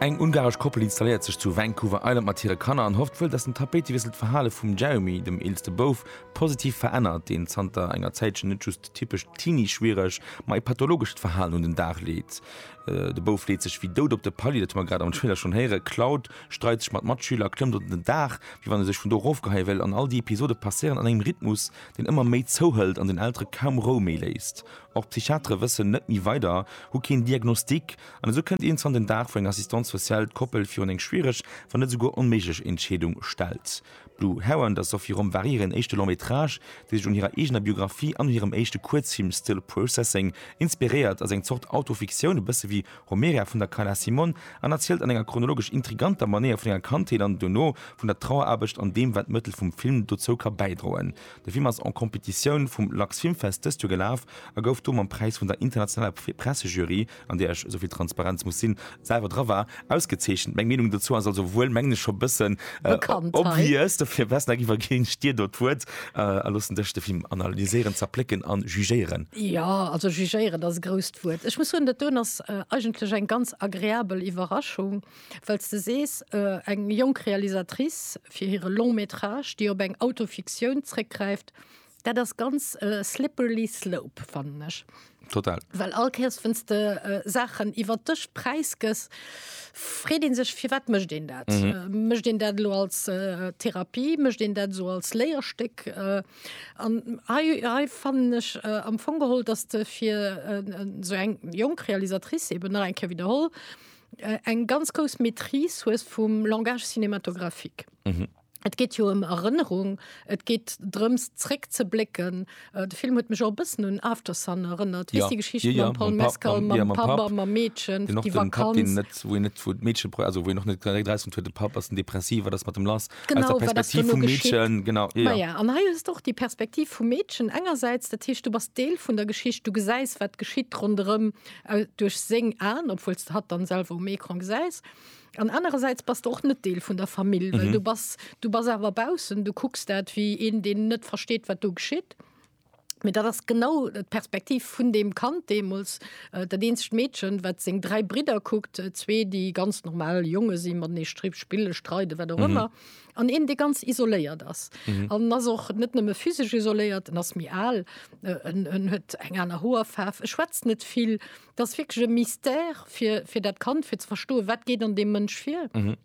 Eng ungaresch Koppel installéiert sech zu Vancouver Island mat hire Kanner an hofft wuel, datt den Tapéitewiessel d'Verhale vum Jeremy, dem eelste Bouf, positiv verännert, deen zanter enger Zäitchen net just typescht Teenie-schwiereg, ma e pathologescht Verhalen un den Dag leet. De Bouf leet sech wéi dout op de Palier, dat hu mer grad am Trailer schonn héieren. D'Cloud streit sech mat Matschüler, klëmmt op den Daach, wéi wann e sech vun do erofgeheie wéilt. An all déi Episode passéieren an engem Rhythmus, deen ëmmer méi zouhëlt an den Eltere kaum Rou méi léisst. Och d'Psychiatere wëssen net méi weider, hu keen Diagnostic an esou kënnt iergendwann den Dag, wou eng Assistante sociale d'Koppel virun eng schwiereg, wann net esouguer onméiglech Entscheedung stellt. D'Lou Hau an der Sophie Romp war hiren éischte Long métrage, dee sech un hirer eegener Biographie an un hirem éischte Kuerzfilm Still Processing inspiréiert. Ass eng Zort Autofiktioun, e bësse wéi Homeria vun der Carla Simon, an erzielt an enger chronologesch intriganter Manéier vun enger Kandheet an dono vun der Traueraarbecht an deem, wat d'Mëttel vum Film dozou ka bäidroen. De Film ass en Competitioun vum Lux Filmfest dëst Joer gelaf a gouf do mam Präis vun der internationaler Pressejury an där ech, esou vill Transparenz muss sinn, selwer dra war, ausgezeechent. Meng Meenung dozou ass also wuel, mengen ech, scho e bëssen obvious. Dofir, Westneck, iwwerginn ech dir do d'Wuert a loossen dech de Film analyséieren, zerplécken an jugéieren. Jo, also jugéieren ass e grousst Wuert. Ech muss soen, dat doen ass eigentlech eng ganz agreabel Iwwerraschung, well s de sees, eng jonk Realisatrice fir hire Long-métrage, déi op eng Autofiktioun zréckgräift, Dat ass ganz e slippery slope, fannen ech. Total. Well all Kéiers, wéinst de Saachen iwwert dech Präis gëss, freet ee sech, firwat mécht een dat? Mécht een dat elo als Therapie? Mécht een dat esou als Léierstéck? An hei, hei fannen ech am Fong geholl, dass de fir esou eng jonk Realisatrice, eben nach eng Kéier widderholl, eng ganz grouss Maîtrise hues vum Langage cinématographique. Et geet jo ëm Erënnerung, et geet drëms zréck ze blécken. De Film huet mech och e bëssen un Aftersun erënnert. Weess déi Geschicht mam Paul Mescal, mam Papp a mam Meedchen, déi Vakanz. Wou een net, wou d'Meedche, also wou een och net direkt erausfënnt, huet de Papp, ass en Depressiv, wat ass mat em lass? Aus der Perspektiv vum Meedchen, genau. Maja, an hei hues de och déi Perspektiv vum Meedchen engersäits, dat heescht du bass Deel vun der Geschicht, du gesäis wat geschitt ronderëm duerch seng Aen, obwuel s de hatt dann selwer um Ecran gesäis. An anerersäits bass de och net Deel vun der Famill, well du bass, du bass awer baussen, du kucks dat wéi een, deen net versteet, wat do geschitt. Mee dat ass genau d'Perspektiv vun deem Kand deemools, dat eenzegt Meedchen, wat seng dräi Bridder kuckt, zwee, déi ganz normal Jonge si, matenee stri spille, streide, wat och ëmmer, an een, dee ganz isoléiert ass. An en ass och net nëmme physesch isoléiert, en ass méi al, en huet eng aner Hoerfaarf, e schwätzt net vill. Dat ass wierklech e Mystère fir, fir dat Kand, fir ze verstoen, wat geet an deem Mënsch vir. Mhm.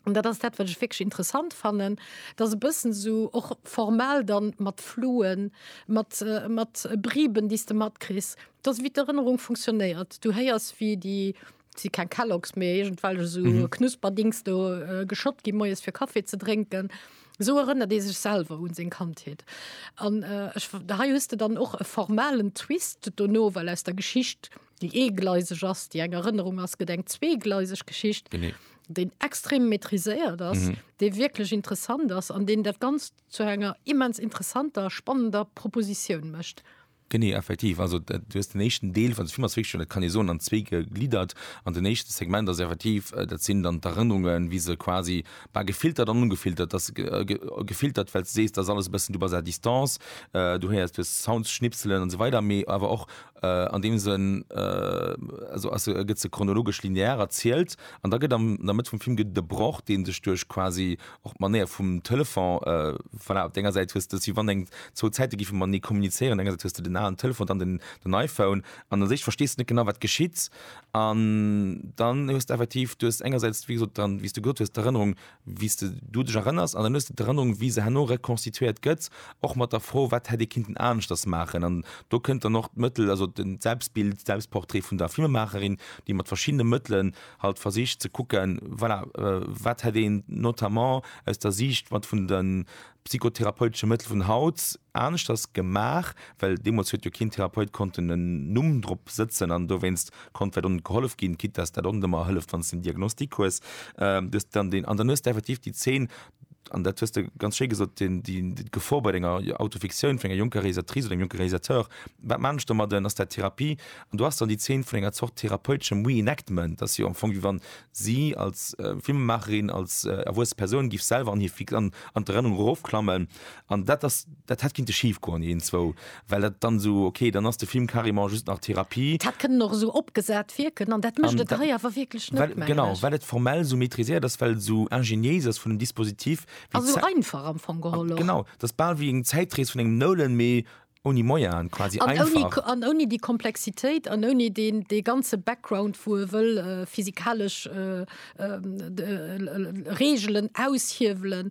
An dat ass dat, wat ech wierklech interessant fannen, dass e bëssen esou och formal dann mat Fluen, mat, mat Briben, déi s de matkriss, dass wéi d'Erënnerung funktionéiert. Du héiers, wéi déi, et si keng Kellogs, mee iergendwelch esou Knusperdings do geschott gi moies fir Kaffi ze drénken. Esou erënnert ee sech selwer un seng Kandheet. An hei hues de dann och e formalen Twist dono, well aus der Geschicht, déi eegleiseg ass, déi eng Erënnerung ass, gëtt eng zweegleiseg Geschicht, déi extrem maîtriséiert ass, déi wierklech interessant ass an deen dat Ganzt zu enger immens interessanter, spannender Propositioun mécht. Genee, effektiv. Also du hues den éischten Deel vun de Film ass wierklech, dat kann ee soen, an zwee gegliddert. An den éischte Segment ass effektiv, dat sinn dann d'Erënnerungen, wéi se quasi, bah, gefiltert an ongefiltert, dass se gefiltert, well s de sees, dat ass alles e bëssen, du bass à distance, du héiers, du hues Sounds, Schnipselen an esou weider, mee awer och an deem Sënn, also ass se, gëtt se chronologesch linear erzielt. An da gëtt am, an der Mëtt vum Film gëtt et e Broch, dee sech duerch quasi Och d'Manéier vum Telefon, voilà, op denger Säit hues de, si wann eng zwou Zäite gife matenee kommunizéieren, engersäits hues de den alen Telefon, dann den den iPhone an u sech verstees de net genau wat geschitt an dann hues de effektiv, du hues engersäits wéi gesot dann, wéi s de gesot hues, d'Erënnerung wéi s de du dech erënners an dann hues de d'Erënnerung wéi se herno rekonstituéiert gëtt, och mat der Fro wat hätt ee kinnten aneschters maachen an do kënnt dann och d'Mëttel, also den Selbstbild, Selbstportrait vun der Filmemaacherin, déi mat verschiddene Mëttelen halt versicht ze kucken, voilà, wat hätt een notamment aus der Siicht mat vun de psychotherapeutesche Mëttel vun haut aneschters gemaach, well deemools huet jo keen Therapeut konnten en Numm drop sëtzen an dowéinst konnt vläicht och net gehollef ginn, quitte dass dat och net ëmmer hëlleft, wann s de en Diagnostic hues. Du hues dann deen, an dann hues de effektiv déi Zeen an dat hues de ganz schéi gesot, d'Gefor bei denger Autofiktioun vun enger jonker Realisatrice oder engem jonke Realisateur, wat man ech domadden, ass dat Therapie? An do ass dann déi Zeen vun enger Zort therapeuteschem Reenactment, dass jo am Fong, wéi wann si als Filmemaacherin, als erwuesse Persoun, géif selwer an hir an d'Erënnerung erofklammen an dat ass, Dat hätt kinnte schif goen iergendzwou, well dat dann esou, ok, dann ass de Film carrément just nach Therapie. Dat hätt kënnen och esou opgesat wierken an dat mécht et hei awer wierklech net, mengen ech. Genau, well et formell esou maîtriséiert ass, well et esou ingéniéis ass vun dem Dispositif. A esou einfach am Fong geholl och. Genau, et ass bal wéi eng Zäitrees vun engem Nolan, mee ouni Moyaen, quasi einfach. An ouni déi Komplexitéit an ouni dee ganze Background, wou e wëll physikalesch Reegelen aushiewelen.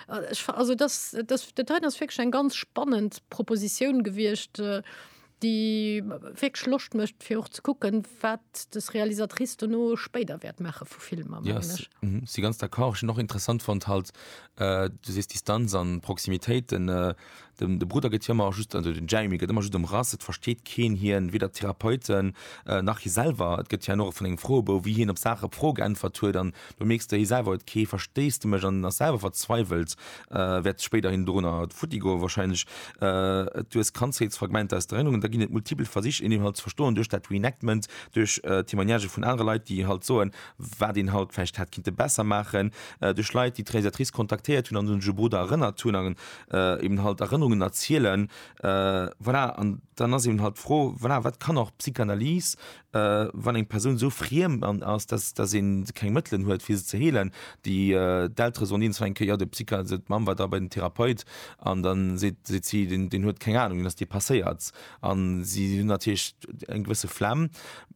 Also das, das, das hei ass wirklich eng ganz spannend Proposition gewircht, äh, déi wirklich Loscht mécht fir och ze kucken, wat des Realisatrice dono spéider wäert maache vu Filmer. Ja, si mhm, ganz d'accord. Ech hun och interessant fonnt halt, äh, du sees Distanz an Proximitéit, den äh, Den de Brudder gëtt jo ëmmer just, also den Jeremy gëtt ëmmer just ëmrass, et versteet keen hien, weder d'Therapeuten nach hie selwer. Et gëtt hien och vun engem Froebou, wéi hien op Saache op Froe geäntwert huet an do mierks de hie selwer huet kee Versteesdemech an ass selwer verzweiwelt, wäert spéiderhin dorunner futti goe warscheinlech. Et du hues Kandheetsfragmenter aus der Erënnerung an da ginn et multipel Versich een Inhalt ze verstoen duerch dat Reenactment, duerch Témoignagë vun anere Leit, déi halt soen, wat een haut vläicht hätt kinnte besser maachen, duerch Leit, déi d'Realisatrice kontaktéiert hunn an un hire Bruder erënnert hunn an eben halt Erënnerungen erzielen. Voilà, an dann ass eben halt d'Fro, voilà, wat kann och d'Psychanalyse, wann eng Persoun esou friem ass, dass, dass ee keng Mëttelen huet, fir se ze heelen. Déi, d'Eltere soen eens nach eng Kéier, jo, de Psycha-, also d'Mamm war da bei den Therapeut an dann seet, seet si, deen, deen huet keng Anung, deen ass depasséiert. An si hunn natierlech eng gewësse Flemm.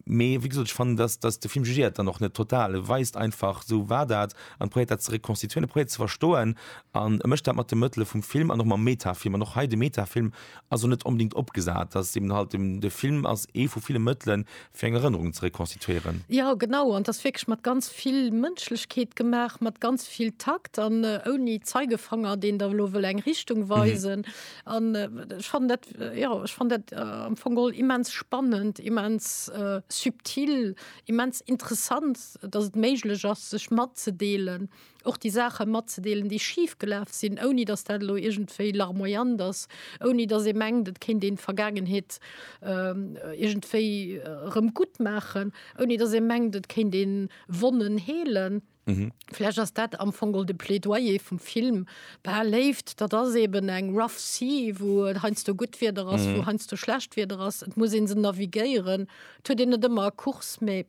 Mee wéi gesot, ech fannen, datt, datt de Film jugéiert dann och net total. E weist einfach, esou war dat, an probéiert dat ze rekonstituieren. E probéiert et ze verstoen an e mécht dat mat de Mëttele vum Film an och mam Metafilm. An och hei, de Metafilm ass och net onbedéngt opgesat. Datt ass eben halt dem, de Film ass ee vu ville Mëttelen, fir eng Erënnerung ze rekonstituieren. Jo, genau. An et ass wierklech mat ganz vill Mënschlechkeet gemaach, mat ganz vill Takt an ouni Zeigefanger, deen da elo wëll eng Richtung weisen. An ech fand dat, jo, ech fand dat am Fong geholl immens spannend, immens subtil, immens interessant, datt et méiglech ass, sech matzedeelen, och déi Saache matzedeelen, déi schif gelaf sinn, ouni datt dat elo iergendwéi larmoyant ass, ouni datt ee mengt, et kéint een d'Vergaangenheet iergendwéi erëm guttmaachen, ouni datt ee mengt, et kéint ee Wonnen heelen. Mhm. Vläch ass dat am Fong de Plädoyer vum Film. Bah, Léift, dat ass eben eng rough sea, wou et heiansdo gutt Wieder ass, wou mhm. heiansdo schlecht Wieder ass. Et muss een se navigéieren. Et huet een net ëmmer e Kurs, mä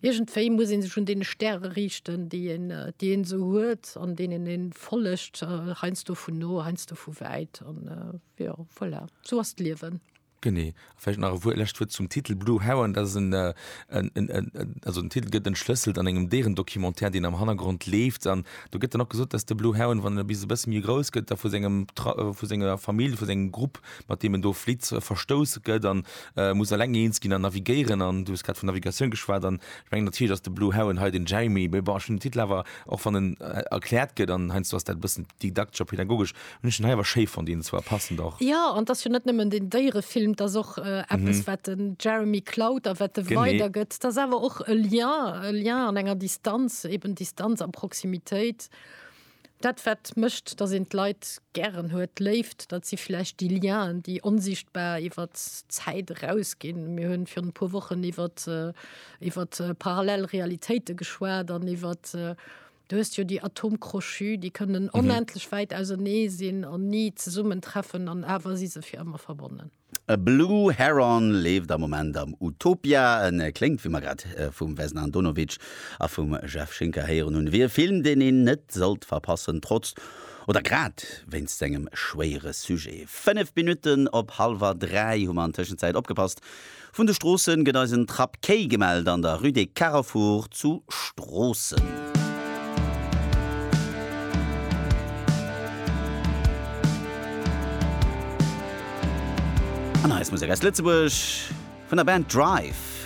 iergendwéi muss een sech un deene Stäre riichten, déi een, äh, déi een esou huet, an deenen een follegt, äh, heiansdo vun no, heiansdo vu wäit an, äh, ja, voilà. So ass d'Liewen. Genee. A vläicht nach e Wuer, e lescht Wuert zum Titel Blue Heron. Dat ass en, en, en, en, also den Titel gëtt entschlësselt an engem Déierendocumentaire, deen am Hannergrond leeft. An do gëtt dann och gesot, dass de Blue Heron, wann en e bis e bësse méi grouss gëtt, da vu sengem Tra, vu senger Famill, vu sengem Grupp, mat deem en do flitt, verstouss gëtt an muss eleng eens ginn an navigéieren. An du hues grad vun Navigatioun geschwat. An ech mengen natierlech ass de Blue Heron hei den Jamie. Mee bon, ech hunn den Titel awer, och wann en erkläert gëtt, an heiansdo ass dat e bëssen didaktesch a pädagogesch, Hun ech den hei awer schéi fonnt, deen zwar passend och. Ja an d'ass jo net nëmmen den Déierefilm, d'ass och eppes wat den Jeremy klaut a wat e weider gëtt. D'ass awer och e Lien, e Lien an enger Distanz, eben Distanz a Proximitéit. Dat wat mécht, datt een d'Leit gären huet, d'Léift, dat si vläicht déi Lienen, déi onsichtbar iwwer d'Zäit eraus ginn. Mir hunn virun e puer Wochen iwwer iwwer parallel Realitéite geschwat an iwwer Du hues jo déi Atome crochus, déi kënnen onendlech wäit ausenee sinn an ni zesummen treffen an awer si se fir ëmmer verbonnen. A Blue Heron leeft am Moment am Utopia. En kléngt, wéi mer grad vum Vesna Andonovic a vum Jeff Schinker héieren hunn, wéi e Film, deen een net sollt verpassen, trotz oder grad wéinst sengem schwéiere Sujet. Fënnef Minutten op hallwer dräi hu mer an Tëschenzäit opgepasst. Vun de Stroossen gëtt eis en Trapp Quai gemellt an der Rue des Carrefours zu Stroossen. An eis Musek aus Lëtzebuerg vun der Band Drive.